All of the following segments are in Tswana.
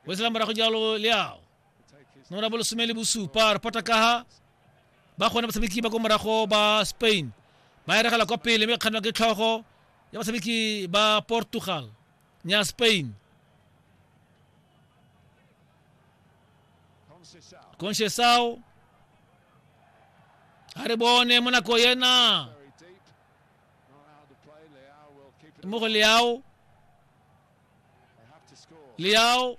o sela morago jalo le ao nomoro ya bolesome le bosupa reporter kaha ba gone batshameki ba ko morago ba spain ba eregela kwa pele mme kganwa ke tlhogo ya batshameki ba portugal nya spain concesao a re bone mo nako yena mo go leao liao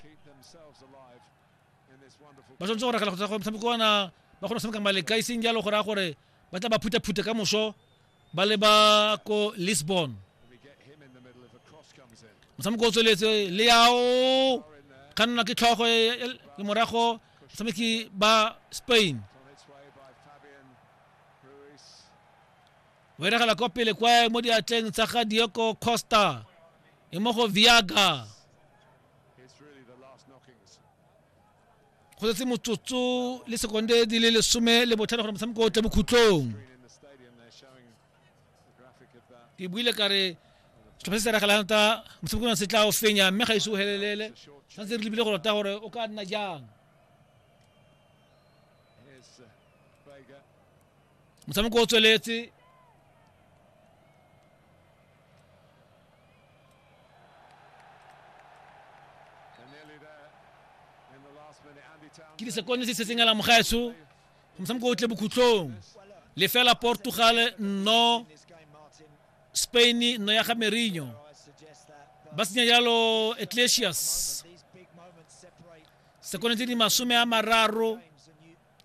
ba tshwanetse go ragela go tsa gore motshameko ona ba kgone go tshameka maleka e seng jalo go raya gore ba tla ba phuthaphuthe ka moso ba le ba ko lisbon motshameko o tsweletse leao kganna ke tlhogo le morago tshameki ba spain o eregela kwa pele kwa mo diatleng tsa ga dioko costa e mo go viaga go setse motsotso le sekonde di le lesome le botlhano gore motshameko o tle bokhutlong ke buile ka re setlhopha se se regelang ta motshameko ona se tla o fenya mme ga ise o helelele santse re lebile go rota gore o ka nna jang motshameko o tsweletse ke disekonde se setseng ala mogaetsho motshameko o tle bokhutlong lefela portugal nno spain nno ya ga merino ba senya jalo ecclesias sekonde tse di masome a mararo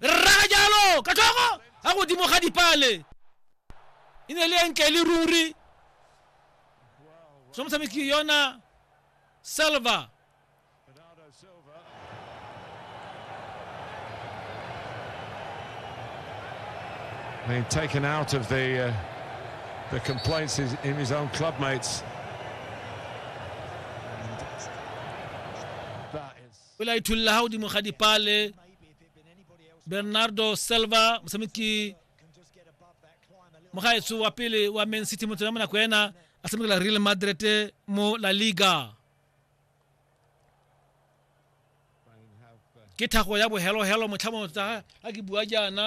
rraga jalo ka tlhogo ga godimo ga dipale e ne le e ntle le ruri so motshameki yona silva Being taken out of the uh, the complaints in his own club mates. o la ithulla ha godimo ga dipale bernardo selva motshameki mogaetso wa pele wa man city motho ya monako ena a tshamekela real madrid mo la liga ke thago ya bohelohelo motlha mo tsa ga ke bua jaana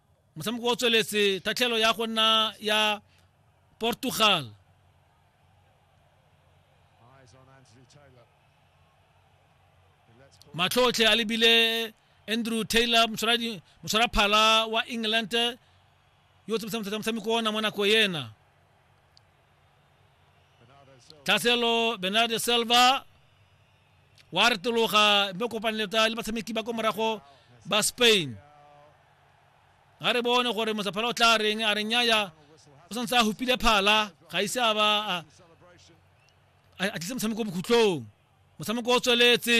motshameko o tsweletse tatlhelo ya go nna ya portugal matlhotlhe a lebile andrew taylor motshwara phala wa england yo o tsamaisang motshameko ona mo nako ena tlhaselo benade silva wa retologa mme kopaneletsa le batshameki ba ko morago ba spain ga re bone gore mosaphala o tla reng a re nyaya o santse a hupile phala ga ise a ba a tlise motshameko bokhutlong motshameko o tsweletse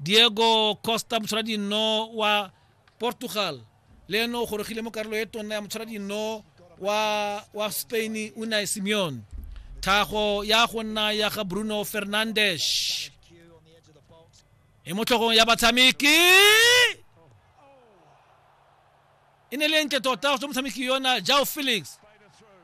diego costa motshwara dino wa portugal le ene o gorogile mo karolo e tonna ya motshwara dino wa, wa spain unai simeon thago ya go nna ya ga bruno fernandes e mo tlhogong ya batshameki e ne le ntle tota go tswa motshameki yona jao felix